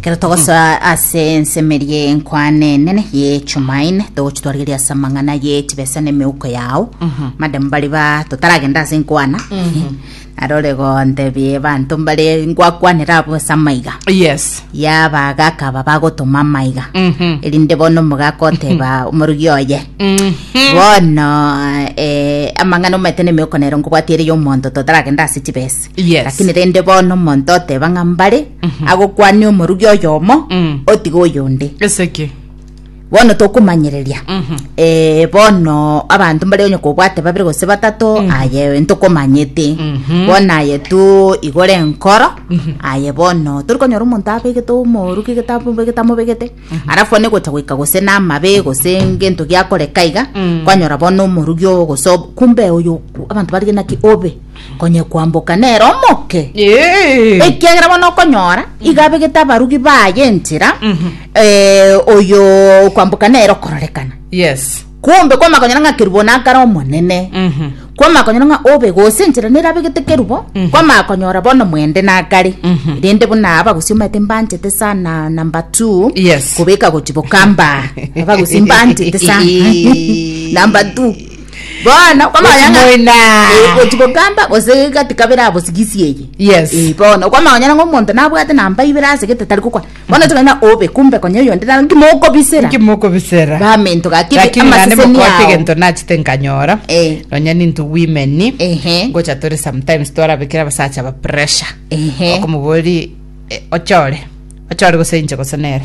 Kero togosoa ase ensemeria eye nkwane enene ye Chumaine, togochi twarigeria ase amang'ana ye chibesa na emeuko yao. Madam bari ba totaragenda ase nkwana. Arore gontebia abanto mbare ngwakwanera abwo ase amaiga. yes Yaba gakaba bagotoma amaiga. Mhm. Erinde bono omogaka oteba omorugi oye. Bono eh, amang'ana omanyete na emeuko nero nkobwati ere ya omonto totaragenda ase chibesa. Yes. Lakini rende bono omonto oteba ng'a mbare agokwania omorugi oyomo Mm. otiga oyonde Eseki. bono tokomanyereria eh, bono abanto mbare onye kobwate babere gose batato aye ntokomanyete bono aye tu igore enkoro aye bono tori konyora omonto abegete omoruki gete amobegete amobegete arafu one gocha goika gose namabe gose ngento giakoreka iga kwanyora bono omorugi oo gose ob- kumbe oyo abanto barige naki obe Onye kwamboka nere omoke, Eh. ekiagera bono okonyora iga abegete abarugi baye enchera eh, oyo kwamboka nere okororekana Yes. kumbe kwamakonyora ng'a kerubo nakare omonene Mhm. kwamakonyora ng'a obe gose enchera nere abegete kerubo kwamakonyora bono mwende nakare rende buna abagusi omanyete mbanchete sana number two Yes. kobeka gochiboka mba abagusi mbanchete sana number two Bono Gochia moino aa. Eh, gochi gokamba gose gati kabere abo sigisi eye Yes. Eh, bono okwama onye ng'a omonto nabwate namba ibere ase gete tari gokwa bono oche kogenda obe kumbe konya oyo onde naro nki mokobisera Nki mokobisera? bamento gaki lakini nane amaseseni mokote ao egento nachete nkanyora Eh. nonya ninto women Ehe. ngocha tore sometimes twarabekera abasacha ba pressure Ehe. okomobori eh, ochore ochore gose inche gose nere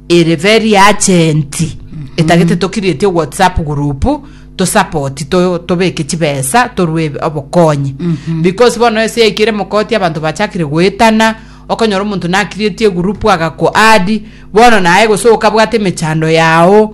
Ere very urgent etagete to create whatsapp group to support to tobeke chibesa torwe eb- obokonyi because bono ase yaikire mokoti abanto bachakire goetana okonyora omonto na create egroup agaku add bono naye gose okabwate emechando yao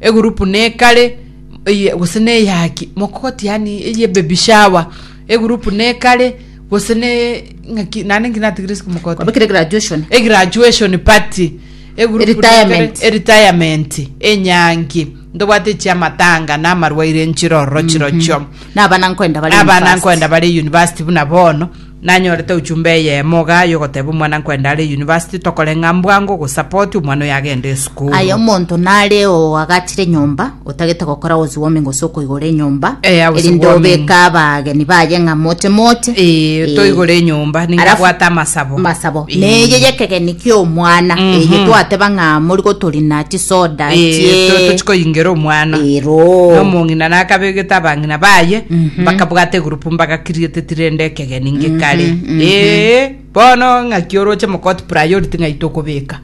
egurupu nekare eye gose na eyaki mokoti yani eye baby shower egurupu nekare gose ne ng'aki nane nki natigire isiko mokoti Kwabekire graduation. e graduation party egurupu Retirement. nekare- e retirement enyangi ntobwate chiamatanga na amarwaire nchirororo chirochio Nabana nkoenda bare abana university. nkoenda bare university buna bono Nanyorete ochumbe eyemo iga y'ogoteba omwana nkwende are university, tokore ng'a mbwango gosupport omwana oyo agende esukuru. Aye omonto nare oagachire enyomba otagete gokora house warming gose okoigora enyomba Eh, house erinde warming. obeke abageni baye ng'a moche moche Eh, Eh, toigore enyomba alafu- ningabwate amasabo masabo Eh. neye yekegeni kia omwana Mhm. eye twateba ng'a mori gotorina chisoda Eh, to- chie tochikoyingera omwana ero nomong'ina nakabegete abang'ina baye bakabwata egroup Mbagakirieteti rende ekegeni ngekare. Mhm, mhm. Ee, bono ng'aki oroche mokoti priority ng'ai tokobeka.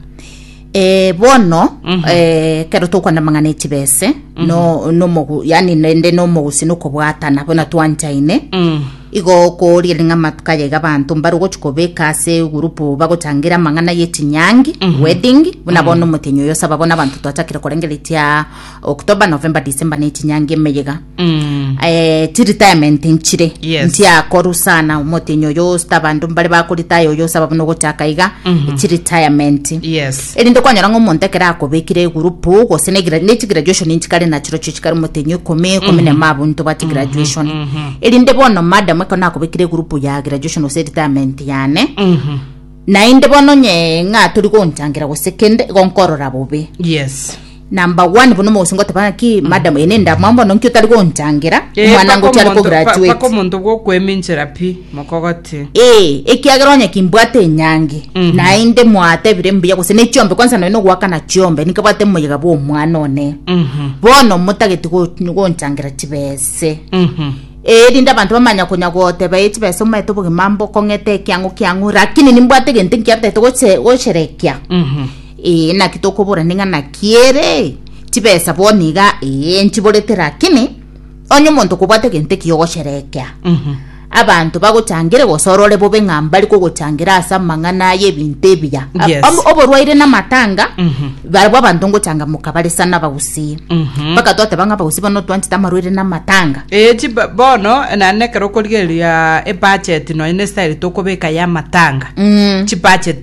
Eh, bono Mhm. eh, kero tokwana mang'ana echibese no nomogu yani nende nomogusi nokobwatana bono twanchaine Mm. igo koria ring'a matuka yaiga abanto mbare ogochi kobeka ase gurupu bagochangira amang'ana yechinyangi wedding buna bono omotenyi oyo osaba bono abanto twachakire korengeretia october november december nechinyangi emeyega Mm. eh, chiretirement nchire Yes. ntiakoru sana omotenyi oyo osita abanto mbare bakoritaya oyo osaba buna ogochaka iga Mhm. chiretirement Yes. erinde kwanyora ng'a omonto ekero akobekire egurupu gose negira- nechigraduation nchikare nachiro chio chikare omotenyi ikomi ikomi na mabo ntobati graduation mhm. erinde bono madam ekero nakobekire egurupu ya graduation gose retirement yane Mhm. naende bono nye ng'a tori gonchangera gose kende igo nkorora bobe Yes. number one bono omogusii ngoteba ng'aki madam ene ndamwa mbono nki otari gonchangera Eh, omwana paka ngochi ari omonto- pa- kograduate paka omonto bwokweminchera pi mokogoti ee ekiagera onye kimbwate enyange Mhm. naende mwatebire mbuya gose ne chiombe kwanza noe nogwakana chiombe nikabwate moyega bwa omwana one Mhm, bono motageti go- gonchangera chibese mhm. erinde abanto bamanya konya goteba e chibese omaete obogima mbo kong'ete ekiang'o kiang'o lakini nimbwate egento nkiatete goche- gocherekia Mhm. Ee, naki tokoborani ng'a naki ere chibesa bono iga ee nchiborete rakini onye omonto kobwate gento ekiya ogosherekea abanto bagochangere gose orore bobe ng'a mbari kogochangera ase amang'ana y'ebinto ebiya A- Yes. om- oborwaire na amatanga barabwo abanto ngochangamoka bare sana abagusii mpaka twateba ng'a abagusii bono twanchete amarwaire na amatanga Eh, chi ba- bono nane ekero okorigereria ebudget nonya ne style tokobeka ya matanga Mm. chi budget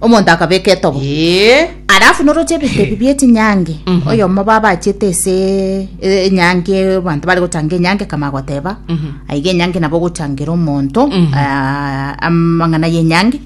Omonto akabeka etogo. Ee. Alafu noroche ebinto ebi bie chinyangi oyomo babachete ese e- enyangi abantu bari gochanga enyangi kama goteba aiga enyangi nabo gochangera omonto ah, amang'ana y'enyangi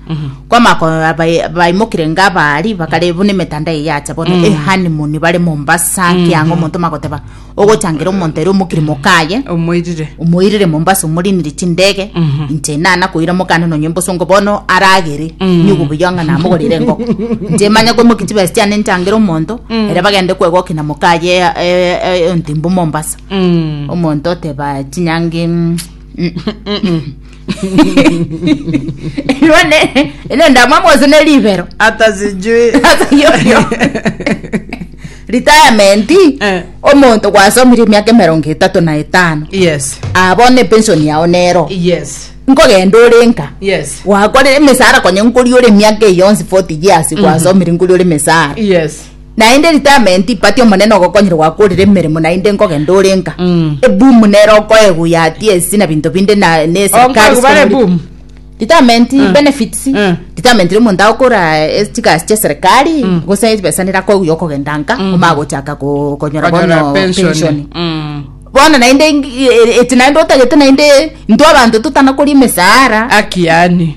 kwama ko- bai- baimokire ngabari bakare buna emetanda eye yacha bono ehanimoni bare mombasa kianga omonto magoteba Ogochangira omonto ere omokiri mokaye, omoirire omoirire Mombasa omoriniri chindege, inche enana koira mokane nonye mbosongo bono aragere nyugu buya ng'a namogorire engoko. Inche emanye komokia chibesa chiane nchangere omonto, ere bagende kwegokia na mokaye eh, eh, eh, ontimbu Mombasa. omonto oteba chinyangi mm, mm, mm, mm. Rwane ene ndamwa mwose ne libero. hata sijui Hata yo yo. Retirement Eh. omonto gwasomire emiaka emerongo etatu na etano yes abone pension yao nero yes nkogenda ore nka yes wakorire emisara konye nkori ore emiaka eyonsi 40 years gwasomire nkori ore emisara yes Naende retirement ipati omonene ogokonyerwa gwakorire emeremo naende nkogenda ore nka Mm. eboom nero okoegwa yati esi na binto binde na ne serikali Okoegwa bare sikongori- boom? retirement Mm. benefits Mm. retirement ri omonto agokora eh, chigasi chia serikali Mm. gose chibesa nera koegwa ya okogenda nka Mm. omara gochaka ko- konyora Konyora bono pension. pension Mm. bono naende ing- e- e- eti naende otagete naende intwe abanto totanakori emesaara Aki yani.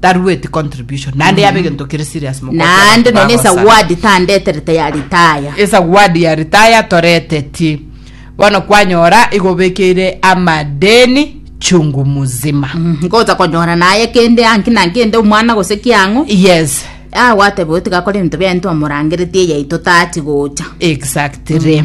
tarueti contribution naende yaba egento kere serious mogocha abantu naende nonye bagosara. esawadi tandeterete ya ritaya esawadi ya ritaya toretetie bono kwanyora igobekeire amadeni chungu muzima ngocha konyora naye kende anki na kende omwana gose kiang'o yes ah gwateba oyo tigakora ebinto biaye ntomorangeretie yaito tachi gocha exactly